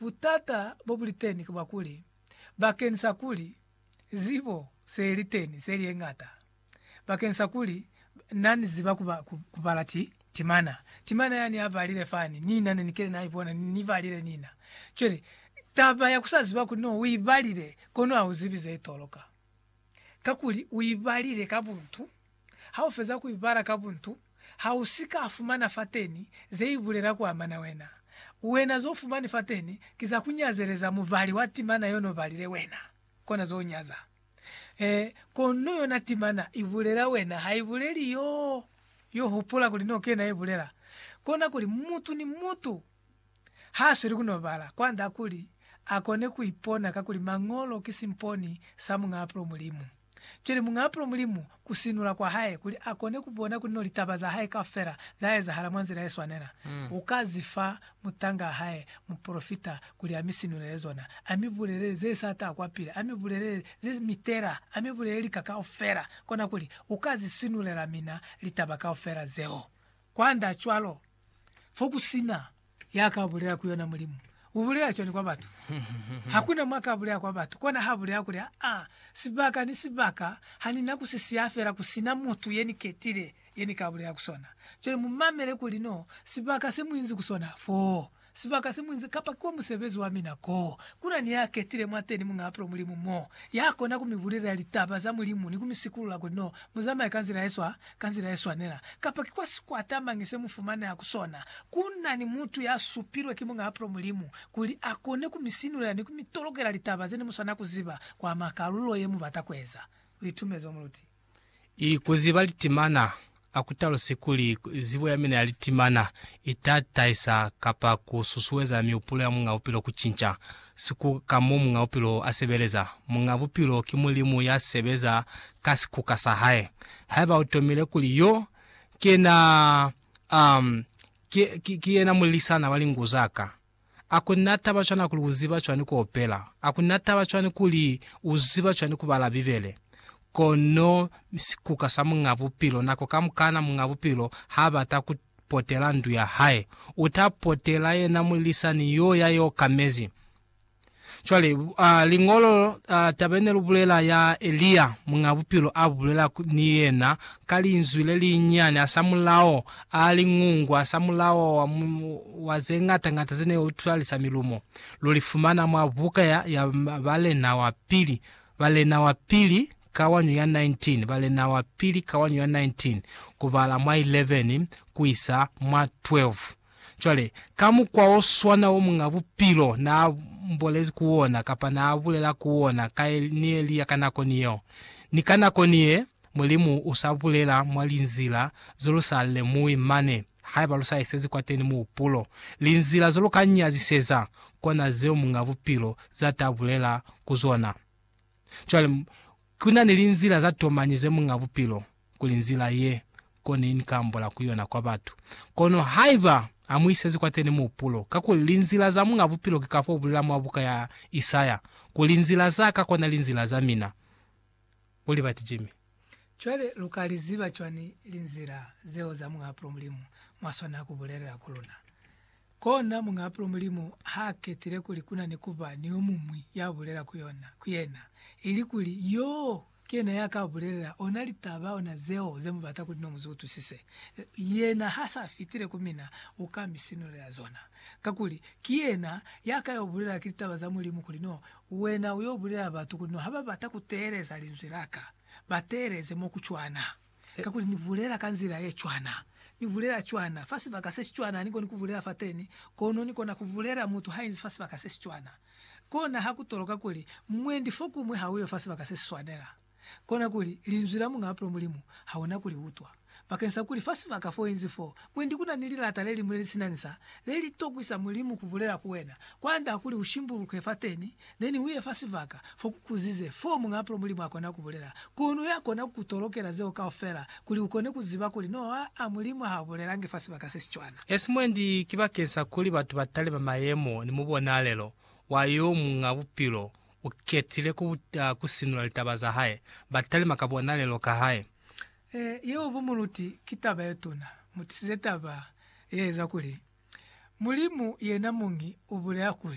Butata bobuliteni ki bwa kuli, bakeni sa kuli zibo seyeli teni seli yeñata, bakeni sa kuli nani ziba kubala ti timana, timana yani abalile fani, nina neni kile na ibona ni ni balile nina. Cwale, taba ya kusa ziba kuli no uibalile kono auzibi zeitoloka. kakuli u i balile ka buntu. Ha u feza ku i bala ka buntu, ha u si ka fumana fateni ze i bulela ku amana wena. Wena z'o fumani fateni ki za ku nyazeleza mubali wa timana y'o n'o balile wena. Kona z'o nyaza. Ee, kono yona timana i bulela wena, ha i buleli y'o. Yo hupula kuli n'o kena i bulela, kona kuli mutu ni mutu Haasweli kunobala kwanda kuli akone kuipona kakuli Mañolo ki simponi sa Muñaapulo Mulimu. Cwale Muñaapulo Mulimu kusinula kwahae kuli akone kubona kuli no litaba zahae kaufela zaezahala mwa nzila yeswanela, ukazifa mutangaa hae mupolofita kuli amisinulele zona, amibulelele zesata kwapili, amibulelele zemitela, amibulelele lika kaufela, konakuli ukazisinulela mina litaba kaufela zeo. Kwand'a cwalo, fo ku si na ya ka bulela ku yona Mulimu, u bulela cwani kwa batu? Ha ku na mwa ka bulela kwa batu, kona ha bulela kuli, Aa, sibaka ni sibaka ha ni na ku si siya fela ku si na mutu ye ni ketile ye ni ka bulela ku sona. Cwale mu mamele kuli no sibaka se mu inzi ku sona foo. Sibaka se muinzi kapa ki kwa musebezi wa mina ko kuna ni ya ketile mwateni muñaa pilo Mulimu mo ya kona ku mi bulelela litaba za Mulimu ni ku mi sikulula kuli no mu zamaya ka nzila ye swa ka nzila ye swanela. Kapa ki kwa sikwata mañi se mu fumaneha ku sona, ku na ni mutu ya supilwe ki muñaa pilo Mulimu kuli a kone ku mi sinulela ni ku mi tolokela litaba ze ne mu swanela ku ziba kwa makalulo ye mu bata ku eza luitumezo. Muluti. I kuziba litimana, a ku talusi kuli zibo ya mina ya litimana i ta tahisa kapa ku susueza mihupulo ya Muñ'a Bupilo ku cinca sikuka ka mo Muñ'a Bupilo a sebeleza. Muñ'a Bupilo ki Mulimu ya sebeza ka sikuka sa hae. Haiba u tomile kuli yo ki yena, um, ki, ki, ki yena mulilisana wa lingu za ka. A kuli na taba cwani kuli u ziba cwani ku opela? A kuli na taba cwani kuli u ziba cwani ku bala Bibele? Kono sikuka sa Muñ'a Bupilo, nako kamukana Muñ'a Bupilo h'a bata ku potela ndu ya hae, u ta potela yena mulisani yo ya i okamezi. Cwale, a, Liñolo, a, taba ye ne lu bulela ya Elia, Muñ'a Bupilo a bulela ku, ni yena, ka linzwi le linyinyani, hasamulaho, a, liñungu, hasamulaho wa, wa ze ñata ñata ze ne utwalisa milumo. Lu li fumana mwa buka ya, ya Balena wa Pili, Balena wa Pili, kawanyo ya 19, Balena wa Pili, kawanyo ya 19, ku bala mwa 11 ku isa mwa 12. Cwale, ka mukwa o swana wo Muñ'a Bupilo naa mbolezi ku wona, kapa naa bulela ku wona, ka e, ni Elia ka nako ni yeo, ni ka nako ni ye, Mulimu u sa bulela mwa linzila zo lu sa lemuwi mane, haiba lu sa isezi kwateni muhupulo, linzila zo lu ka nyaziseza, kona zeo Muñ'a Bupilo za ta bulela ku zona. Cwale, ku na ni linzila za tomañi ze Muñ'a Bupilo, kuli nzila ye, koni Ni ka ambola ku yona kwa batu. Kono haiba Ha mu isezi kwateni muhupulo, kakuli linzila za Muñ'a Bupilo ki ka fo bulela mwa buka ya Isaya, ku, Linzila za Ka kona linzila za mina. U libati, Jimmy? Cwale lu ka li ziba cwani linzila zeo za Muñaapulo Mulimu mwa swanaa ku bulelela ku luna? Kona, Muñaapulo Mulimu ha ketile kuli ku na ni ku ba ni yo muñwi ya bulela ku yona, ku yena, ili kuli yoo ki yena ya ka bulelela ona litaba, ona zeo ze mu bata kuli no mu zi utwisise. Yena ha sa fitile ku mina, u ka mi sinulela zona. Kakuli, ki yena ya ka yo bulelela ki litaba za Mulimu kuli no Wena u yo bulela batu kuli no ha ba bata ku teeleza linzwi la ka, ba teeleze mo ku cwana, kakuli ni bulela ka nzila ye cwana, ni bulela cwana fa sibaka se si cwana ha ni koni ku bulela fateni, kono ni kona ku bulela mutu ha inzi fa sibaka se si cwana. Kona ha ku toloka kuli mwendi fokuñwi ha u yo fa sibaka se si swanela. kona kuli Linzwi la Muñ'a Apulo Mulimu hauna ku li utwa. Bakensa kuli fa sibaka fo inzi foo, mwendi kuna ni lilata le liñwi le li sina nsa, le li tokwisa Mulimu ku bulela ku wena, kwand'a kuli u shimbuluke fateni, then uye fa sibaka fo ku kuzize, foo Muñ'a Apulo Mulimu a kona ku bulela. Kono ya kona ku ku tolokela zeo kaufela, kuli u kone ku ziba kuli no aa, Mulimu ha bulelangi fa sibaka se si cwana. Esi mwendi ki bakensa kuli batu ba talima mayemo ni mubonalelo wa yo Muñ'a Bupilo U ketile ku ku sinula litaba za hae, ba talima ka bonalelo ka hae. E, yeo bo muluti ki taba ye tuna. Mu tisize taba ye eza kuli, Mulimu yena muñi u bulela kuli.